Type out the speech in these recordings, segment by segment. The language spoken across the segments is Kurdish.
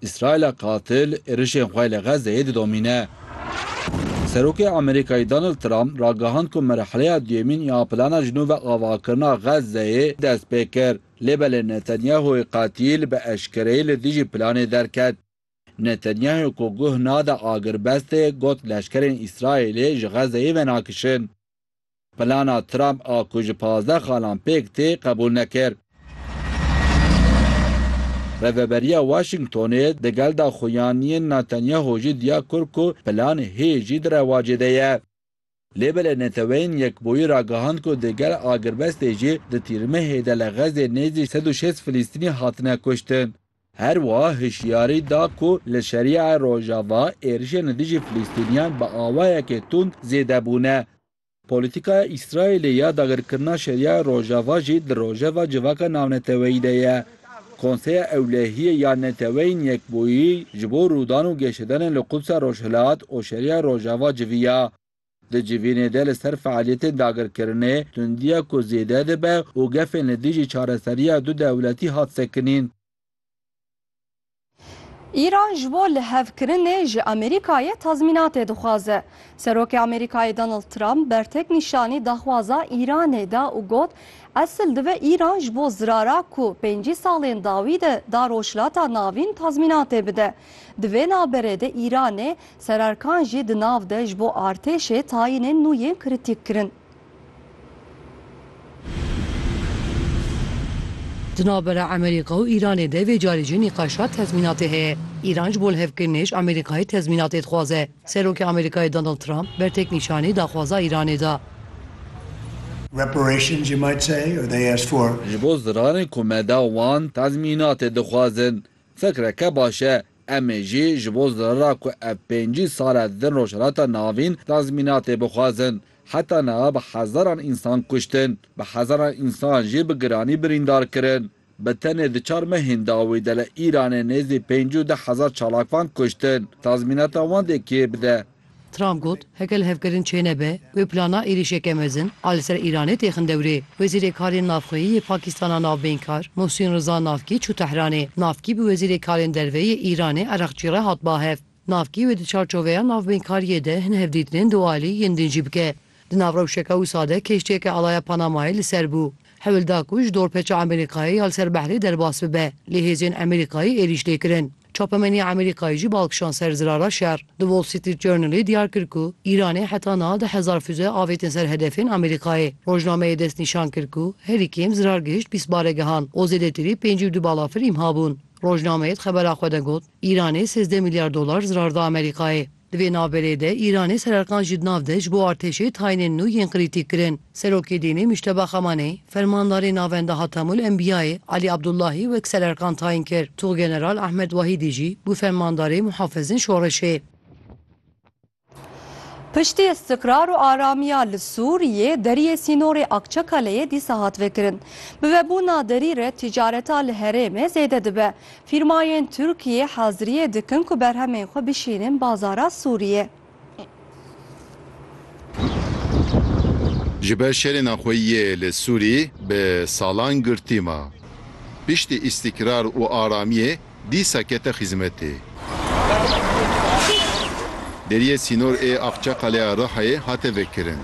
Îsraîla qatil êrişên xwe li Xezzeyê didomîne. Serokê Amerîkayê Donald Trump ragihand ku merheleya duyemîn ya plana ji nû ve avakirina Xezzeyê dest pê kir. Lê belê Netanyahu'yê qatîl bi eşkereyî li dijî planê derket. Netanyahu ku guh nade agirbestê got leşkerên Îsraîlê ji Xezzeyê venakişin. Plana Trump a ku ji pazdeh xalan pêk tê qebûl nekir. Rêveberiya Washingtonê di gel daxuyaniyên Netanyahu jî diya kir ku plan hê jî di rewacê de ye. Lê belê Neteweyên Yekbûyî ragihand ku di gel agirbestê jî di tîrmehê de li Xezzê nêzî sed û şêst Filîstînî hatine kuştin. Her wiha hişyarî da ku li Şeriayê Rojava êrişên li dijî Filistîniyan bi awayekê tund zêde bûne. Polîtîkaya Îsraîlê ya dagirkirina Şeriayê Rojava jî di rojeva civaka navneteweyî de ye. Konseya Ewlehiyê ya Neteweyên Yekbûyî ji bo rûdan û geşedanên li Qudsa Rojhilat û Şeriayê Rojava civiya. Di civînê de li ser fealiyetên dagirkirinê tundiya ku zêde dibe û gefên li dijî çareseriya du dewletî hat sekinîn. Îran ji bo lihevkirinê ji Amerîkayê tazmînatê dixwaze. Serokê Amerîkayê Donald Trump bertek nîşanî daxwaza Îranê da û got, Esil dibe Îran ji bo zirara ku pêncî salên dawî de da Rojhilata Navîn tazmînatê bide. Di vê navberê de Îranê Sererkan jî di nav de ji bo artêşê tayînên nû yên kritîk kirin. Di navbera Amerîka û Îranê de vê carî jî nîqaşa tezmînatê heye. Îran ji bo lihevkirinê ji Amerîkayê tezmînatê dixwaze. Serokê Amerîkayê Donald Trump berteknîşanî daxwaza Îranê da. Reparations you might say or they asked for. Ji bo ziranê ku me da wan tezmînatê dixwazin. Fikreke baş e. Em ê jî ji bo zirara ku ev pêncî sal e din Rojhilata Navîn tazmînatê bixwazin. Heta niha bi hezaran însan kuştin, bi hezaran însan jî bi giranî birîndar kirin. Bi tenê di çar mehên dawî de li Îranê nêzî pêncî û deh hezar çalakvan kuştin. Tazmînata wan dê kê bide? Trump got, Heke li hevkirin çênebe, wê plana êrîşeke mezin a li ser Îranê tê xin dewrê. Wezîrê Karên Navxweyî yê Pakîstana Navbeynkar Mohsîn Riza Navkî çû Tehranê. Navkî bi Wezîrê Karên Derve yê Îranê Ereqçî re hat bahev. Navkî wê di çarçoveya navbeynkariye de hin hevdîtinên dualî yên din jî bike. Di nav rewşeke wisa de kêştiyeke alaya Panamayê li ser bû. Hewil da ku ji dorpeça Amerîkayê ya li ser behrê derbas bibe, lê hêzên Amerîkayê êrîş lê kirin. Çapemeniya Amerîkayê jî bal kişand ser zirara şer. The Wall Street Journalê diyar kir ku Îranê heta niha deh hezar füze avêtin ser hedefên Amerîkayê. Rojnameyê destnîşan kir ku herî kêm zirar gihişt bîst baregehan û zêdetirî pêncî û du balafir îmha bûn. Rojnameyê di xebera xwe de got, Îranê sêzdeh milyar dolar zirar da Amerîkayê. Di vê navberê de Îranê sererqan jî di nav de ji bo artêşê tayînên nû yên krîtîk kirin. Serokê dînê Mujteba Xamaney, fermandarê navenda Hatemul Enbiyayê Elî Abdulahî wek sererqan tayîn kir. Tuxgeneral Ehmed Wahîdî jî bû fermandarê muhafizên şoreşê. Piştî îstiqrar û aramiya li Sûriyê, deriyê sînorê Akçakaleyê dîsa hat vekirin. Bi vebûna derî re tîcareta li herêmê zêde dibe. Fîrmayên Tirkiyê haziriyê dikin ku berhemên xwe bişînin bazara Sûriyê. Ji ber şerê naxweyiyê li Sûrî bi salan girtî ma. Piştî îstîkrar û aramiyê dîsa kete xîzmetê. Deriyê sînor ê Axçaqaleya Rihayê hate vekirin.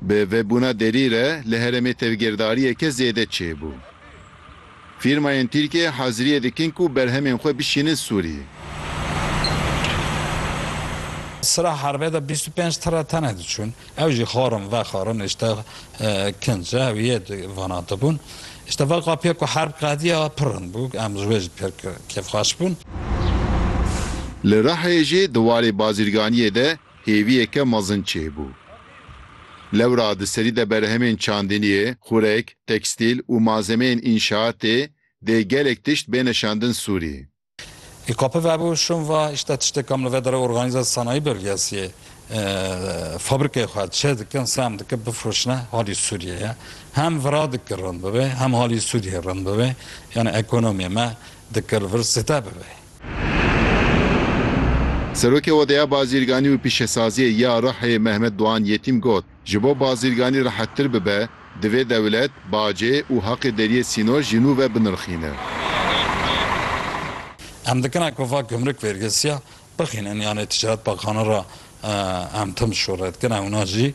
Bi vebûna derî re li heremê tevgêrdariyeke zêde çêbû. Fîrmayên Tirkiyeyê haziriyê dikin ku berhemên xwe bişînin Sûriyê. Sira herbê de bîst û pênc tire tenê diçûn. Ew jî xwarin vexwarin îşte kinc e, ew yê vanandibûn. Îşte vê qapiyê ku herb qediya pirin bû, em ji wê jî pir kêfxweş bûn. Li Rihayê jî di warê bazirganiyê de hêviyeke mezin çêbû. Lewra di serî de berhemên çandiniyê, xurek, tekstîl û malzemeyên înşaatê dê gelek tişt bêne şandin Sûrî. Î kapi vebû şûn va îşte tiştê kam li vê derê organîze sanayî bêrgiyesiyê fabrîkeyê xwe çê dikin sem dikin bifroşine halî Sûriyê ye. Hem vira dikir rind bibê hem halî Sûriyê rind bibê. Yanî ekonomiyê me dikir vir zêde bibê. Serokê Odeya Bazîrganî û Pîşesaziyê ya Rihê Mehmet Doğan Yetîm got, Ji bo bazîrganî rehettir bibe, divê dewlet, bacê û haqê deriyê sînor ji nû ve binirxîne. Em dikine ku va gumruk vêrgesiya bixînin yanê Ticaret Baxana re em tim şûre dikine wina jî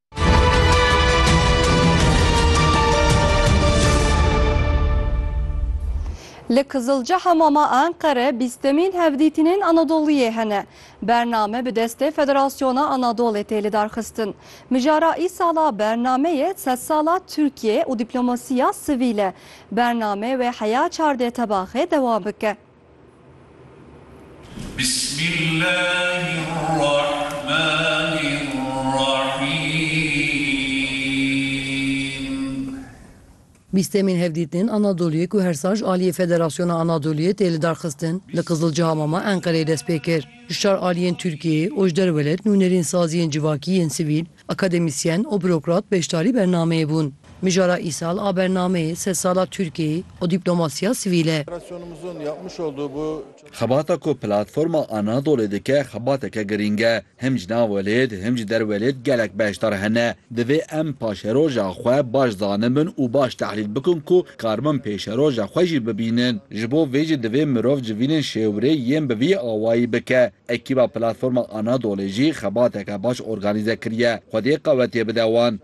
Li Kizilceha Mama Enqere bîstemîn hevdîtînên Anadoliyê hene. Bername bi destê Federasyona Anadolê tê lidarxistin. Mijara îsala bernameyê sedsala Tirkiyê û dîplomasiya sivîl e. Bername wê heya çardê tebaxê dewam bike. Bîstemîn hevdîtinên Anadoluyê ku her sal ji aliyê Federasyona Anadoluyê tê lidarxistin li Qizilcihamama Enqereyê dest pê kir. Ji çar aliyên Tirkiyeyê û ji derwelê nûnerîn saziyên civakî yên sivîl Akademîsyen û burokrat beşdarî bernameyê bûn. Mijara îsal a bernameyê sed sala Tirkiyeyê û dîplomasiya sivîl e. Xebata ku Platforma Anadolê dike xebateke girîng e. Him ji nav welêt, him ji der welêt gelek beşdar hene. Divê em paşeroja xwe baş zanibin û baş tehlîl bikin ku karbin pêşeroja xwe jî bibînin. Ji bo vê jî divê mirov civînên şêwirê yên bi vî awayî bike. Ekîba Platforma Anadolê jî xebateke baş organîze kiriye, xwediyê qewetiyê bide wan.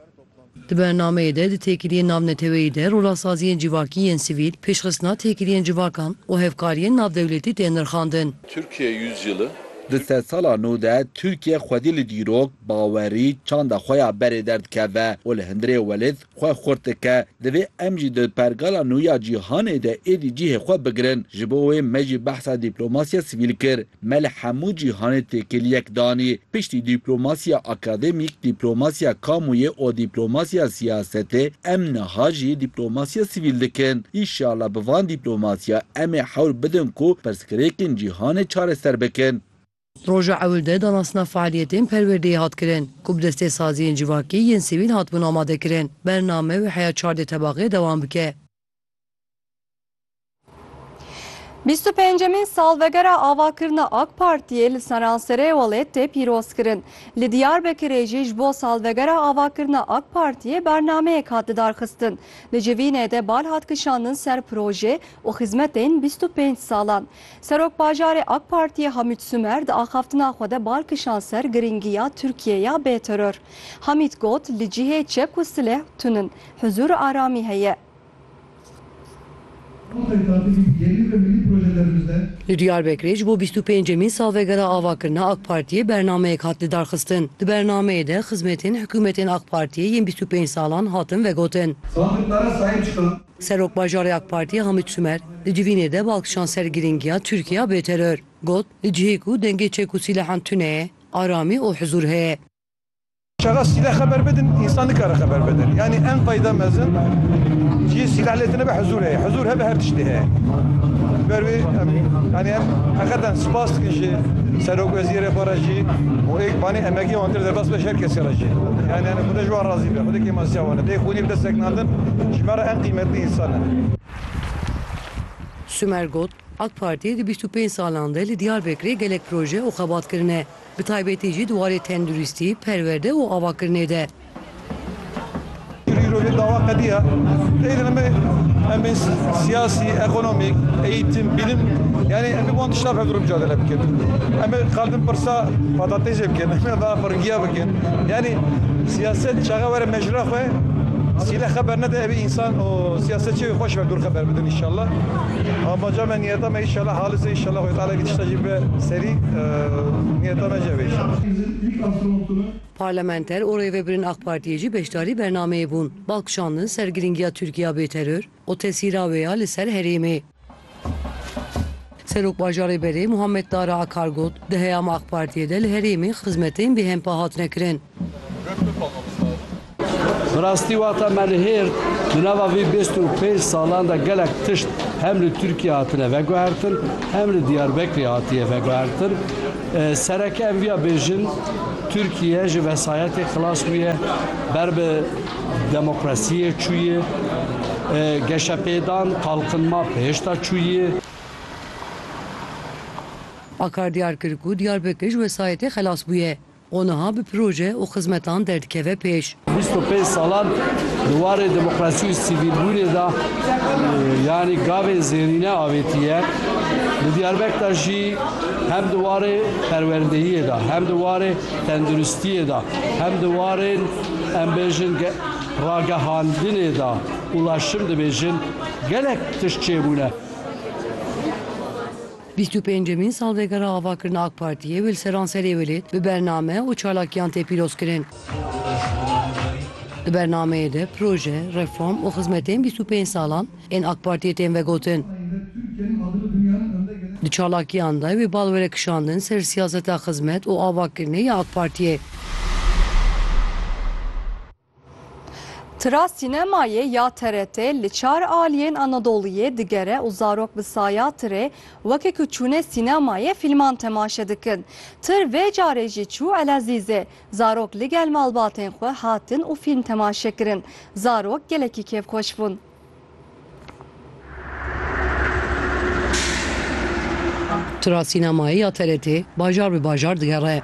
Di bernameyê de di têkiliyên navneteweyî de rolesaziyên civakî yên sivîl, pêşxistina têkiliyên civakan û hevkariyên navdewletî tên nirxandin. Türkiye Yüzyılı. Di sedsala nû de Tirkiye xwedî li dîrok, bawerî, çanda xwe ya berê derdikeve û li hundirê welêt xwe xurt dike. Divê em jî di pergala nû ya cîhanê de êdî cihê xwe bigirin. Ji bo wê me jî behsa dîplomasiya sivîl kir. Me li hemû cîhanê têkil yek danî. Piştî dîplomasiya akademîk, dîplomasiya kamûyê û dîplomasiya siyasetê em niha jî dîplomasiya sivîl dikin. Înşallah bi van dîplomasiya em ê hewl bidin ku pirsgirêkên cîhanê çareser bikin. Roja ewil de danasna fealiyetên perwerdeyê hat kirin ku bi destê saziyên civakî yên sivîl hatibûn amade kirin. Bername wê heya çardê tebaxê dewam bike. Bîst û pêncemîn salvegera avakirina AK Partiyê li Seranserê welêt tê pîrozkirin. Li Diyarbekirê jî ji bo salvegera avakirina AK Partiyê bernameyek hat lidarxistin. Li civînê de bal hat kişandin ser projê û xizmetên bîst û pênc salan. Serokbajarê AK Partiyê Hamît Sumer di axaftina xwe de bar kişand ser girîngiya Tirkiyeya bê teror. Hamît got, Li cihê çek û sileh tun in, huzûr û aramî heye. Li Diyarbekirê ji bo bîst û pêncemîn salvegera avakirina AK Partiyê bernameyek hat lidarxistin. Di bernameyê de xizmetên hikûmetên AK Partiyê yên bîst û pênc salan hatin vegotin. Serokbajarê AK Partiyê Hamît Sumer di civînê de bi alkişan ser girîngiya Tirkiya bê teror got, Di cihê ku dengê çek û sîlehan tune ye, aramî û huzûr heye. Çaxa sîleh xeber bidin, însan nikare xeber bidin. Yanî en tayda mezin cihê sîleh lê tune be huzûr heye. Huzûr hebe her tiştê heye. Ji ber wê em yanî em heqeten spas dikin ji serokwezîrê xwe re jî û êk banê emegê wan kir derbas be ji her kesî re jî. Yanî hûn ne ji wan razî be. Xwedî kêman siya wan e. Dê xwînî bi destek nan. Mezin ji me re en qîmetli însan e. Sumer got, Ak Partî di bîst û pênc salan de li Diyarbekirê gelek proje û xebat kirine, bi taybetî jî di warê tenduristî, perwerde û avakirinê de. Îro îro vê dawa qediya teyî dine me em ê siyasî, ekonomîk, eğîtim, bîlim yanî em ê wan tiştan hev dir micadele bikin. Em ê qal din pirsa patatêsê bikin, em ê axwe ringiya bikin. Yanî siyaset çaxe were Ji la xwe sîle xeber nede evî însan û siyasetçî wê xweş ve gur xeber bidin înşallah. Amaca me niyeta me înşallah halis e înşallah Xwedê Teala evî tişta jî bibe serî niyeta me jî ev e înşallah. Parlamenter û rêveberên AK Partiyê jî beşdarî bernameyê bûn. Bal kişandin ser girîngiya Tirkiye ya bêteror, û tesîra wê ya li ser herêmê. Serok Bajarê Berê Muhammed Tara Akar got, Di heyama AK Partiyê de li herêmê xizmetên bêhempa hatine kirin. Bi rastî wexta me li hêrd di nava vî bîst û pênc salan de gelek tişt hem li Tirkiyê hatine veguhertin hem li Diyarbekirê hatiye veguhertin. Sereke em viya bêjin, Tirkiye ji vesayetê xilas bûye ber bi Demokrasiyê çûyê, geşepêdan, qalqinma pêşda çûyê. Akar diyar kir ku Diyarbekir ji wesayetê xelas bûye û niha bi proje û xizmetan derdikeve pêş. Bîst û pênc salan di warê demokrasî û sivîlbûnê de yanî gavên zêrîne avêtiye. Li Diyarbek de jî hem di warê perwerdeyiyê de, hem di warê tenduristiyê de, hem di warên Em bêjin ge ragehandinê de ulaşım dibêjin gelek tişt çêbûne. Bîst û pêncemîn salvegera avakirina AK Partiyê li seranserê welêt bi bername û çalakiyan tê pîrozkirin. Di bernameyê de proje, reform û xizmetên bîst û pênc salan ên AK Partiyê tên vegotin. Di çalakiyan de wê bal were kişandin ser siyaseta xizmet û avakirinê ya AK Partiyê. Tira sînemayê ya TRT li çar aliyên Anadoluyê digere û zarok bi saya tirê weke ku çûne sînemayê fîlman temaşe dikin. Tir vê carê jî çû Elezîzê. Zarok ligel malbatên xwe hatin û fîlm temaşe kirin. Zarok gelekî kêfxweş bûn. Tura sînemayê ya TRT'ê bajar bi bajar digere.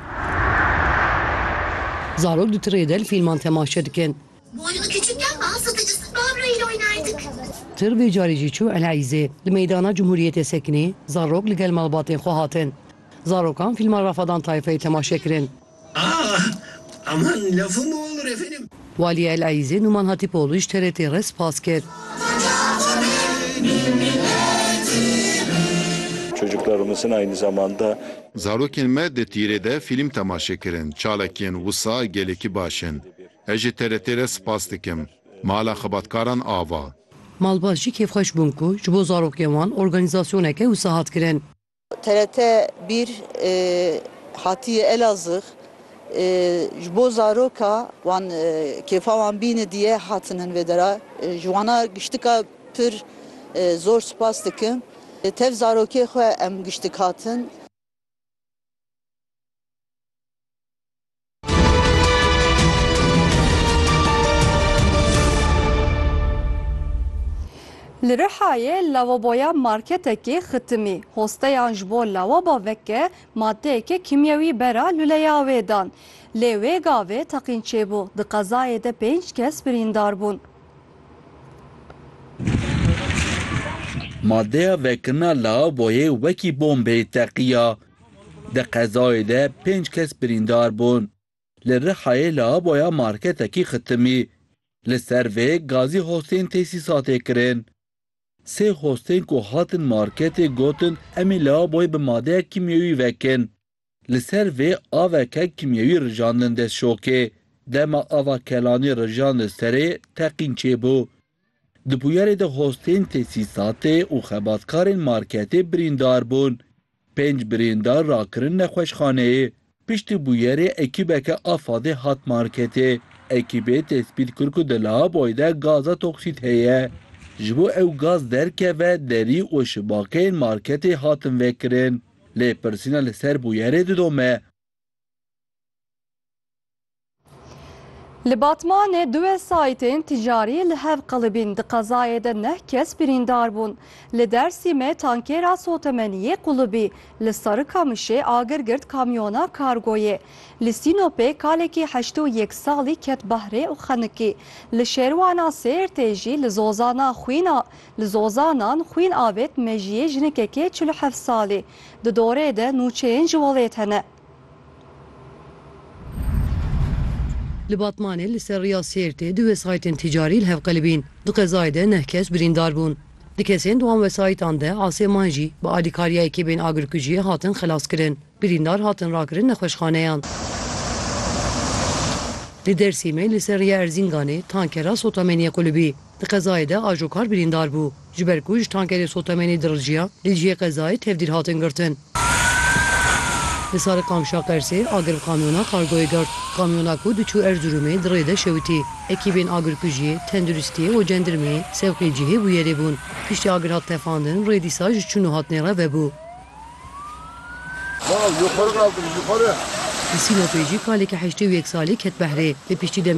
Zarok di tirê de li fîlman temaşe dikin. Tir vê carê jî çû Eleyîzê. Li Meydana Cumhuriyetê Sekinê zarok li gel malbatên xwe hatin. Zarokan fîlma Rafadan Tayfayê temaşe kirin. Walî El Eîzê Numan Hatîpoglû ji TRT re spas kir. Zarokên me di tîrê de fîlm temaşe kirin. Çalakiyên wisa gelekî baş in. Ez ji TRT re spas dikim. Mala xebatkaran ava. Malbat jî kêfxweş bûn ku ji bo zarokên wan organîzasyoneke wisa hat kirin. TRT bir hatiye Elazığ ji bo zaroka wan kêfa wan bîne diye hatin hin vê dera ji wana giştika pir zor spas dikim tev zarokê xwe em giştik hatin. Li Rihayê lavaboya marketekê xitimî. Hosteyan ji bo lawaba veke madeyeke kîmyewî bera luleya wê dan. Lê wê gavê teqîn çêbû. Di qezayê de pênc kes birîndar bûn. Madeya vekirina lawaboyê wekî bombeyê teqiya. Di qezayê de pênc kes birîndar bûn. Li Rihayê lavaboya marketekî xitimî. Li ser vê gazî hostên tesîsatê kirin. Sê hostên ku hatin marketê gotin em ê lavaboyê bi madeya kîmyewî vekin. Li ser vê aveke kîmyewî rijandin dest şokê. Dema ava kelanî rijand li serê teqîn çêbû. Di bûyerê de hostên tesîsatê û xebatkarên marketê birîndar bûn. Pênc birîndar rakirin nexweşxaneyê. Piştî bûyerê ekîbeke a FAD'ê hat marketê. Ekîbê tespît kir ku di lavaboyê de gaza toksît heye. Ji bo ew gaz derkeve derî û şibakeyên marketê hatin vekirin. Lêpirsîna li ser bûyerê didome. Li Batmanê du wesayîtên tîcarî li hev qilibîn, di qezayê de neh kes birîndar bûn. Li Dersîmê tankêra sotemeniyê qulibî, li Sarikamişê agir girt kamyona kargoyê, li Sînopê kalekî heşt û yek salî ket bahrê û xenikî, li Şêrwana Sêrtê jî li Zozana xwîn a li Zozanan xwîn avêt mejiyê jinekekê çil û heft salî. Di dorê de nûçeyên ji welêt hene. Li Batmanê li ser riya Sêrtê du wesayîtên tîcarî li hev qelibîn. Di qezayê de neh kes birîndar bûn. Di kesên di wan wesayîtan de aseman jî bi alîkariya ekîbên agirkujiyê hatin xelaskirin. Birîndar hatin rakirin nexweşxaneyan. Li Dêrsîmê li ser riya Erzînganê tankera sotamêniyê qulibî. Di qezayê de ajokar birîndar bû. Ji ber ku ji tankerê sotemenê diriljiya, li dijî qezayê tevdîr hatin girtin. Li Sariqamşa Qersê agir bi kamyona kargoyê girt. Kamyona ku diçû Erzirûmê di rê de şewitî. Ekîbên agirkujiyê, tenduristiyê û cendirmeyê sewqî cihê bûyerê bûn. Piştî agir hat tefandin rê dîsa ji çûn û hatinê re vebû. Li Sînopê jî kaleke heştê û yek salî ket behrê. Li piştî demekê